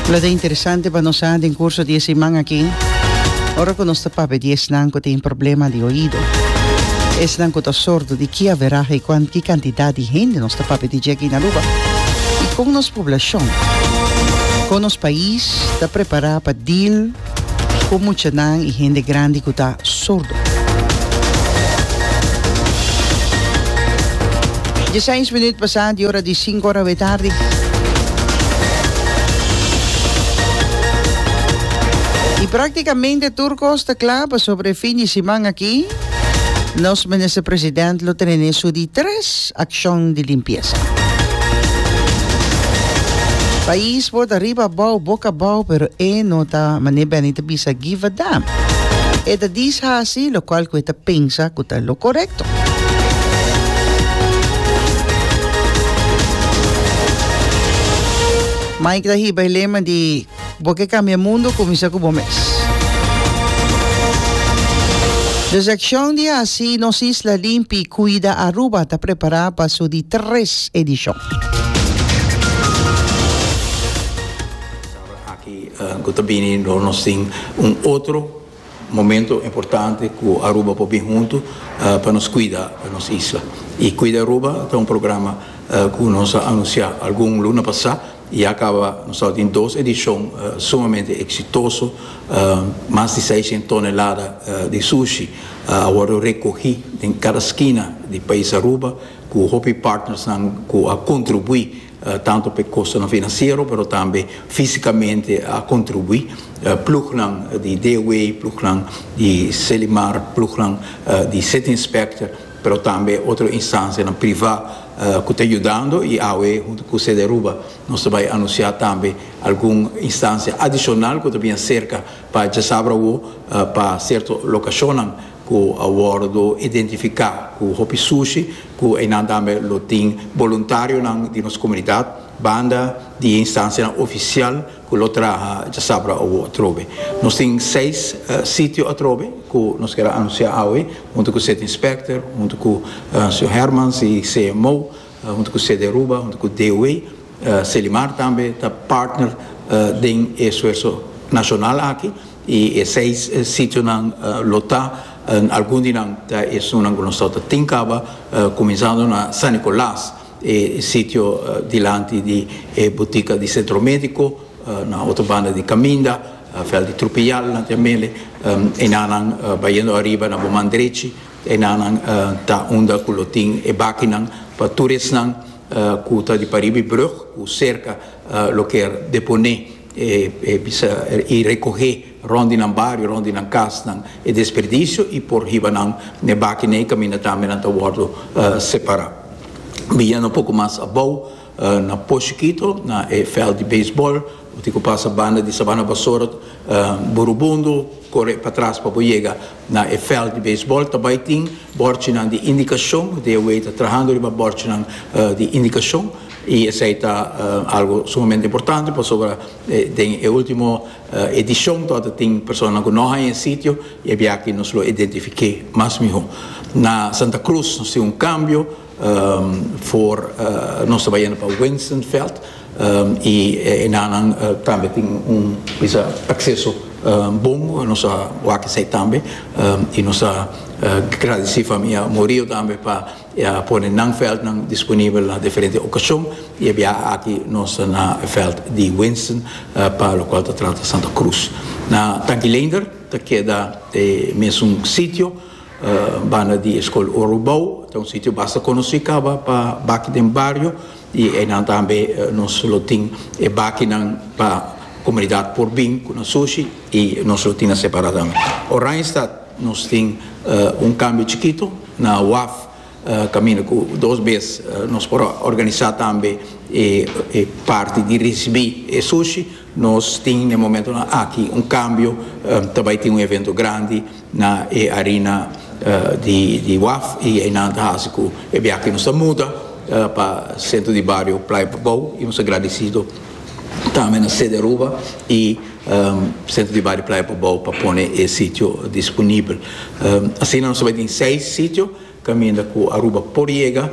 Lo ta interesante pa nos sa den curso di e siman aki, ora cu nos ta papia di esnan cu tin problema di oido, esnan cu ta sordo, di ki averaha y cuan ki cantidad di hende nos ta papia di dje aki na Aruba y con nos poblacion, con nos pais ta prepara pa deal. Ku muchanan i hende grandi ku ta sordo. Diesseis minüt pasá di ora di sinku ora awé tardi. I praktikamente tur kos ta kla pa sobre e fin di siman aki. Nos Minister President lo tene nesu di tres accion di limpiesa. Pais por ta riba abao, boca abao pero e no ta mane Benny ta bisa give a damn. E ta diz haci lo cual cu e ta pensa cu ta lo corecto. Mike ta hiba e lema di. Bo ke kambia mundu kuminsá ku bo mes. Des akshon di hasi nos isla limpi, Cuida Aruba ta prepará pa su di tres edishon. Aki ku ta bini dor nos tin un otro. Momento importante cu Aruba por bin hunto pa nos cuida nos isla. Y Cuida Aruba ta un programa cu nos a anuncia algun luna pasa y ya caba nos tabatin dos edicion sumamente exitoso. Mas di seiscientos tonelada di sushi a wordo recogi den cada skina di pais Aruba cu hopi partnersnan cu a contribui. Tanto p'e kostonan finansiero pero tambe físikamente a kontribuí. Plugnan di DW, plugnan di Selimar, plugnan di City Inspector pero tambe otro instansianan privá ku ta yudando i awe huntu ku Sedearuba nos ta bai anunsiá tambe algun instansia adishonal ku ta bini serka pa djasabra awo pa sierto lokashonnan. cu a wordo identifica cu hopi sushi cu eynan tambe lo tin boluntarionan di nos comunidad banda di e instancianan oficial cu lo traha djasabra awo atrobe. Nos tin seis sitio atrobe cu nos ker a anuncia awe hunto cu City Inspector, hunto cu Sr. Hermans y CMO. Hunto cu Sederuba, hunto cu DOE, Selimar tambe ta partner den e esfuerso nacional aki y e seis sitionan lo ta, algun di nan ta esunnan cu nos tawata ta tin caba, cuminsando na San Nicolas, e sitio dilanti di e butica di Centro Medico, na otro banda di caminda, Veld di Trupiyal, Nantiamele, enanan bayendo ariba na bo man drechi, E nannan ta unda ku lo tin e bakinan pa tur esnan ku ta di pariba e brùg ku serka lo ker deponé e bisa i rekohé rònt di nan bario, rònt di nan kasnan e desperdisio i por hiba nan na e bakinan ei kaminda tambe nan ta wòrdu separá. Bianan un poku mas abou. Na Poshikito, na e veld di baseball, bo tin ku pasa banda di Sabana Bassort, Burubundu, kore patras pa bo yega na e veld di baseball. Ta bai tin bòrchinan di indikashon, bo tin awey ta trahando riba bòrchinan di indikashon i esei ta algu sumamente importante pasobra den e ultimo edishon to a ta tin personanan ku no haña e sitio i a biaha aki nos lo identifiké mas mihó. Na Santa Cruz nos tin un kambio. For nos ta bai yendo pa Winstonveld y enanan tambe tin un bisa acceso bon nos a wak esey tambe y nos ta gradici famia Murillo tambe pa e a pone nan veldnan disponible na diferente ocasion y e biaha aki nos ta na veld di Winston pa locual ta trata Santa Cruz. Na Tanki Leender ta keda e mesun sitio. Banda di e skol Urubou ta un sitio basta konosí kaba pa baki den bario i einan tambe nos lo tin e bakinan pa komunidat por bin ku nan sushi i nos lo tin nan separá tambe. Oranjestad nos tin un kambio chikito na waf kaminda ku dos bes nos por organisá tambe e parti di risibí e sushi. Nos tin n'e momentonan aki un kambio, ta bai tin un evento grandi na e arina di waf i einan ta hasi ku e biaha nos ta muda pa sentro di bario Playa Bobou i nos ta gradisido tambe na Sede Aruba i sentro di bario Playa Bobou pa pone e sitio disponibel. Asina nos ta bai tin seis sitio. caminda cu Aruba por yega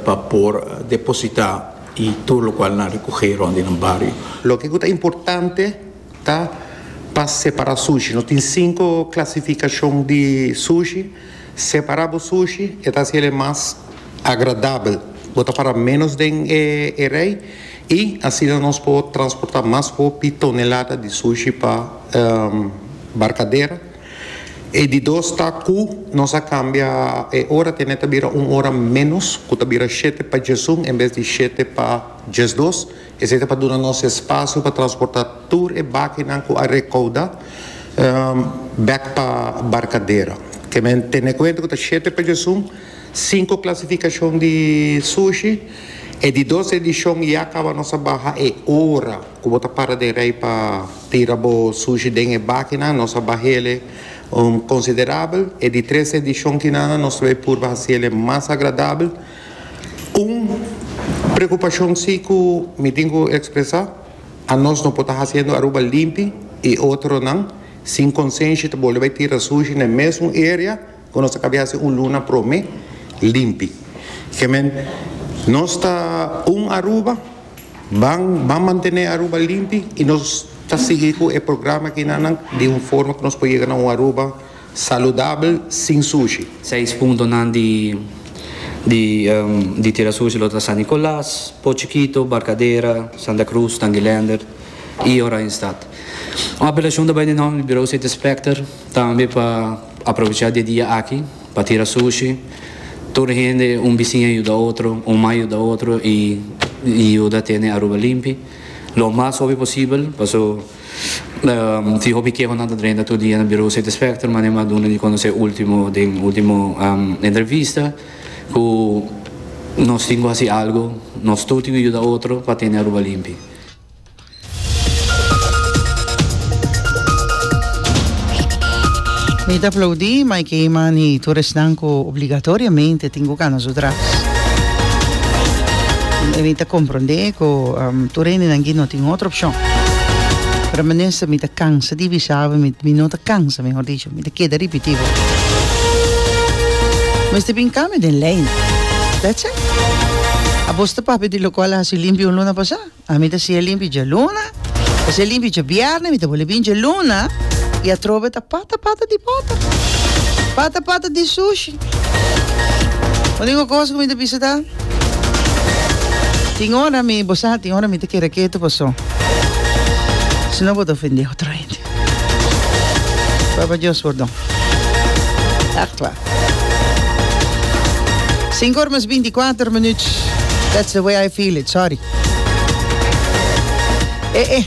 pa por deposita y tur locual nan recoge rond di nan bario. Loke cu ta importante ta pa separa sushi. Nos tin cinco clasificacion di sushi. Separa bo sushi e ta haci el'e mas agradabel. Bo ta para menos den e rey y asina nos por transporta mas hopi tonelada di sushi pa barcadera. E di dos ta ku nos a kambia e ora tene ta bira un ora ménos ku ta bira shete pa djesun en bes di shete pa djesdos. Esei ta pa duna nos espasio pa transportá tur e bakinan ku a rekaudá bèk pa Barkadera. Ke men tene kuenta ku ta shete pa djesun, sinku klasifikashon di sushi. E di dos edishon ya kaba nos a baha e ora. Cu bo ta para den rey pa tira bo sushi den e bakinan, nos a bahele un considerabel. E di tres edicion kinan nos lo e purba haciele mas agradabel. Un preocupacion si cu mi tin cu expresa, a nos no por ta haciendo Aruba limpi y otronan sin consenshi ta bolbe bay tira sushi n'e mesun area. Cu nos ta cabe haci un luna prome limpi. Kiemen nos ta un Aruba ban ban mantene Aruba limpi y nos ta sigui cu e programa akinanan di un forma cu nos por yega na un Aruba saludabel sin sushi. Seis puntonan di di di tira sushi lo ta San Nicolas, Pochikito, Barcadera, Santa Cruz, Tanguilender y Oranjestad. Un apelacion ta bay di nomber di Bureau City Inspector. Tambe pa aprovecha di e dia aki pa tira sushi, tur hende un bisiña yuda otro, un mai yuda otro y yuda tene Aruba limpi lo mas hopi posibel paso tin hopi kehonan ta drenta tur dia na Birou City Specter, manera a duna di conoce ultimo den ultimo entrevista cu nos tin cu haci algo, nos tur tin cu yuda otro pa tene Aruba limpi. Mi ta aplaudí, ma e ke mani tur esnan ku obligatoriamente tin ku kana su tras. E mi ta komprondé ku tur hendenan aki no tin otro opshon. Pero minister mi ta kansa di bisabu, mi no ta kansa mehor dicho, mi ta keda ripití bo. Mester bin kambio den lei, that's it. Abos ta papia di lokual a hasi limpio un luna pasá? Ami ta siña limpi djaluna, ta siña limpi djabièrnè, mi ta bole bini djaluna, i atrobe e ta pata pata di pòter, pata pata di sushi. Unico cos cu mi ta bisa ta, tin ora mi, bo sa tin ora mi ta kere ketu paso si no bo ta ofende otro. Papa Dios pordon. Ach kla. Sinku or mes binti kuater minuut. That's the way I feel it, sorry. E e.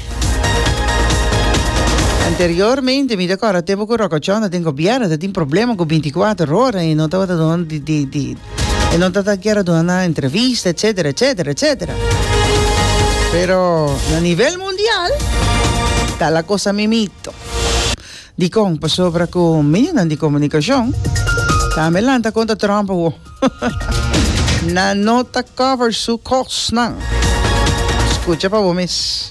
Anteriormente mi ta kòrda tempo ku rokochòn ta den gobièrnu ta tin problema ku binti kuater ora i no tabata duna di di di E no ta ta kier a duna nan entrevista, etcetera, etcetera, etcetera. Pero na nivel mundial, ta la cosa mimito. Dikon? Pasobra ku midionan di komunikashon tambe lanta konta Trump awo. Nan no ta cover su kosnan. Skucha pa bo mes.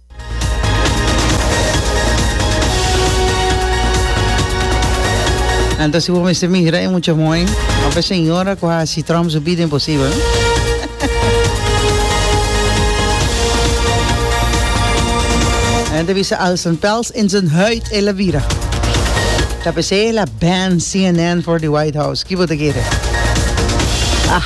Anto si bo mester mira e mucha mooi, of e señora cu haci Trump su bida imposible. Anto bisa als een pels in zijn huid e la vira. KPC la ban CNN voor de White House. Kibo te kere. Ah.